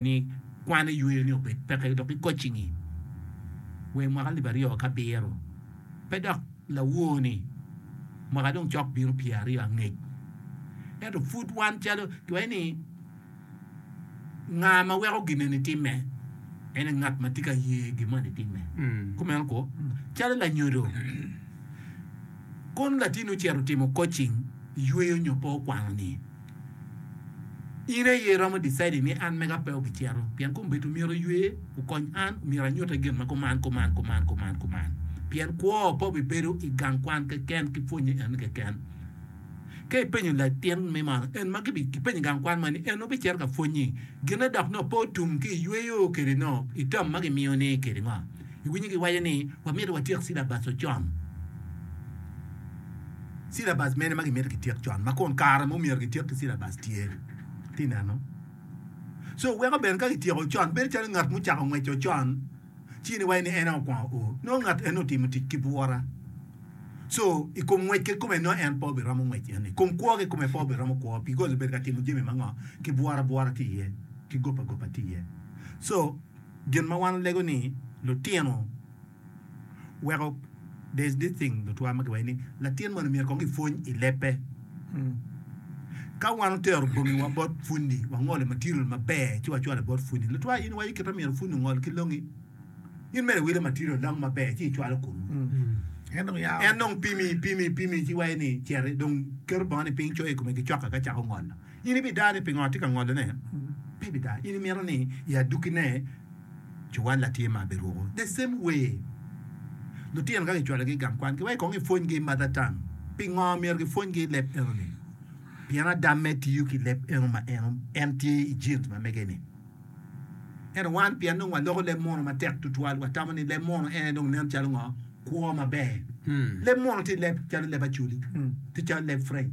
ni kwan eyweyo ni obed peke dok i kocci-ngi wee mwaka lib aryo ki abiro pe dok lawoo-ni mwaka dong cok bino pye aryo angec. Ento pud wan calo kiwaco ni nga ma weko gineni timme en aye ngat ma tye ka ye gin moni timme. Kumeno ko calo lanyodo kong latini ocito timo kocing yweyo nyo pe okwano-ni. In aye iromo decide ni an mega pe obicito pien kombedo myero oywe okony an myero anyute gin ma kuman kuman kuman kuman kuman pien kwo pe obibedo i gang kwan keken ki pwonye en keken ka ipenyo latin me man en ma kipenyo gang kwan man ni en obicito ka pwonye gine dok nongo pe otum ki iyweyo kede no itam ma gimiyo ni kede ngo iwinyo giwaco ni wamito watyek silabas ocon Cilabas mene ma gimito gityek con ma kun kare ma omyero gityek ki cilabas tye? Ti neno. So weko bene ka gityeko con bedo calo ngat mucako ngweco con ci niwaci ni en aye okwongo o nongo ngat eni otimo tic ki bwura. So i kom ngwec kikome nongo en pe obiromo ngwec eni. I kom kwo kikome pe obiromo kwo bikos obedo ka timo jami ma ngo ki bwura bwura ti iye ki goba goba ti iye. So gin ma wan olego ni lutino weko there is this thing lutwa ma kiwaco ni latin mono myero kong kipwony i lebbe. Ka wan otero bongiwa bot pwonyi, wangolo material maber ci wacwalo bot pwonyi. Lutwa in iwaco kit ma myero pwonyi ongol ki longi, in mere iwilo material long maber ci icwalo kunu. En dong yao. En dong pimi pimi pimi ci waco ni citi dong keto bongoni piny coyo i kome ki cokka ka cako ngolo. In ibida ni pingo atye ka ngolone? Pe ibida. In imito ni i adukine cuwalla tye ma biruko? The same way, lutino ka kicwalogi i gang kwan, kiweko kong kipwonygi i mother tongue. Pingo myero kipwonygi leb enoni? Pien Adamme tiyo ki leb eno ma en tye i genes ma mege-ni. Ento wan, pien dong waloko leb muno matek tutwal, watamo ni leb muno en aye dong nen calo ngo? Kwo maber. Leb muno tye leb calo leb Acholi, tye calo leb French.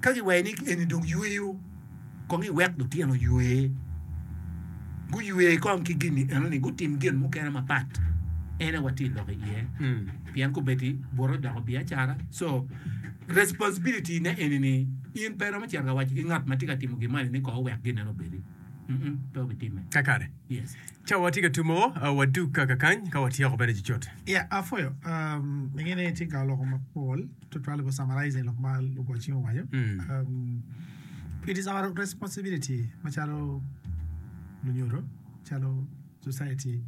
Ka giweri ni eni dong yweyo, kong iwek lutino ywe. Guywe kong ki gin-ni enoni, gutim gin mukene mapat. En aye watye ka lok iye. Pien kobedi bute odoko biacara, so responsibility-ne eni-ni in pe iromo cito ka waco ki ngat ma tye ka timo gin moni ni kong owek ginneno obedi. Mm-mm, pe wubitimme. Kakare. Yes. Cawa watye ka tumo, ah, wadug kakakany ka watyeko bene cucut. Ya, apwoyo. Um, ingene tye ka loko mapol. Tutwal go summarizing lok ma lugocci owaco. It is our responsibility macalo lunyodo, calo society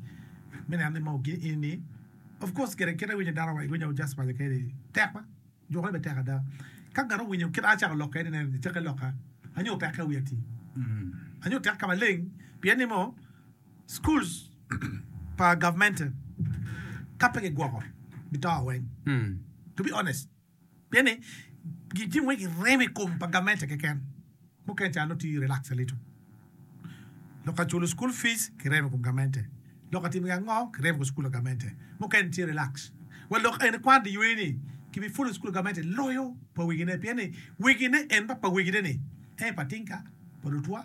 me neno ni mogi ini of course kit kit awinyo dano wa iwinyo just waco keni tek ma jukone bene tek ada ka ngat owinyo kit an acako lokke ni nen ni cake loka anyo tek ka wiya ti anyo tek ka maleng pien ni mo Schools pa governmental ka pe kigwoko bito weng to be honest pien ni gin tye mogo giremo i kom pa governmental keken mukene ca nongo tye relax lito lok ka culo school fees kiremo i kom governmental lok ka timo gia ngo kiremo i kom school pa governmental mukene tye relax wa lok eni kwan dyewei ni ki bi follow school pa governmental loyo pa wegine pien ni wegine en ma pa wegine ni en aye pa tinka pa lutwa.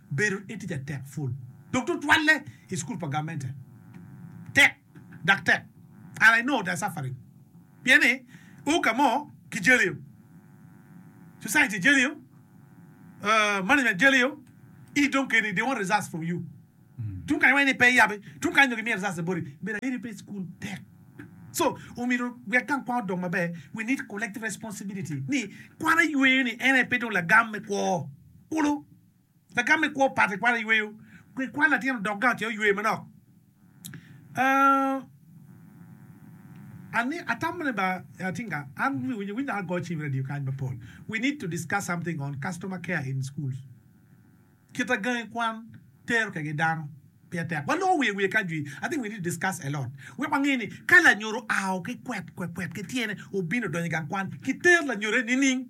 Bedo etica tek pul, dok tutwalle i cukul pa gamente tek dok tek. And I know they're suffering pien ni u ka mo ki jeliyo, society jeliyo, management jeliyo, i dong keni they want results from you. Tung kany iwaco ni pe iyabe, tung kany dong gimiyo results ni boti. Bedo ayeyo pe i cukul tek. So omyero wek gang kwan odong maber, we need collective responsibility ni kwan ayweyo ni en aye pe dong lagam me kwo kulu. Lagam me kwo pat ikwano yweyo ki kwan latin odok gang ce oywe manok ooh Ani atamo ni ba ating ka an wi winyo winy dok ago cim radio kany mapol we need to discuss something on customer care in schools kita gangi kwan tero kege dano peya tek waloko wiye wiye kany jwi I think we need to discuss a lot wek wange ni ka lanyodo ao ki kwet kwet ki tyene obino odonyo igang kwan kiter lanyodo eni nining.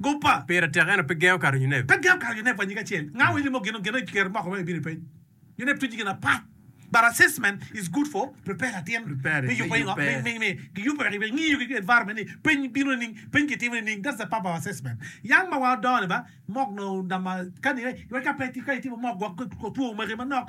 Guppa. Pire tek ento pe gengo kato Yunep. Pe gengo kato Yunep wa nyige acel. Nga wa ilimo gino geno iker moko ma ibino ipeny. Yunep tuji gin apat but assessment is good for prepare latin me yupe ingo me gi yupe wek ibe ngiyo ki environment ni peny bino nining peny ki timo nining that's the purpose of assessment yang ma wa odongo ni ba mock nongo nama kani iwek ka pe ka itimo mock gwok two magi manok.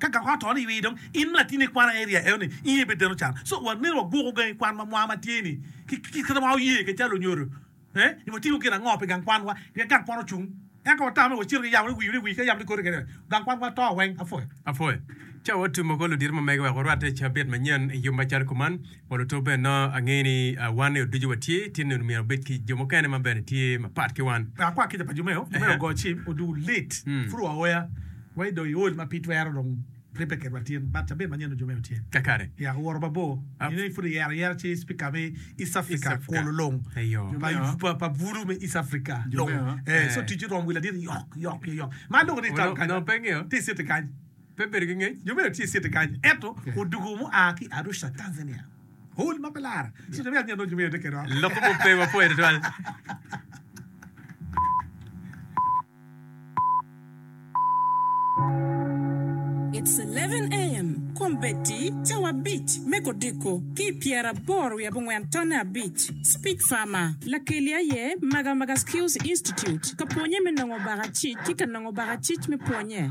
Ka gako ato ni iwi dong in latin ikwana area eno ni inge bed deno can so wa neno wa gwoko gangi kwan ma mwa ma tye ni ki ki kit ma oye ke calo onyodo eh ni wa timo gin ango pi gang kwan wa pien gang kwan ocung ento wa tamo ni wa cito ki yamo ni wi ni wi ka yamo ni koti kene gang kwan wa to weng apuwe. Apuwe. Ca wa tumo ko ludito ma mege wek orwatte cabit manyen i yub ma calo kuman. Pol oto bene nongo angeyo ni wan ni oducu watye tinni onongo myero wabed ki jo mukene ma bene tye mapat ki wan. Pe akwa kica pa jo meo, jo meo ogo cim oduu lit pud wa oya wa idong iol ma pe twero dong ribbe kedwa tin but cabit manyen dong jo meo tye Kakare. ya oworo mabor inongo pud iyero ayera ci speaker me East Africa kolo long Eyo. pa pa bulu me East Africa long eh so ticci rom wi ladit yok yok yok ma aloko ni Onongo onongo pe ngeyo. ti city kany. pe bedo ki ngec, jo meno tye i city kany ento odwogo mua ki Arusha, Tanzania. Hul ma pe lar. So jo me anya nongo jo meno tye kede oko. Lok mo pe wa pwere twal. It's eleven AM, Kombeddi cawa abic me kodiko ki i pyeraboro wiye abongwen tonne abic, Speech Farmer, Lakeli aye Magamaga Skills Institute ka pwonye me nongo baka cic ki ka nongo baka cic me pwonye.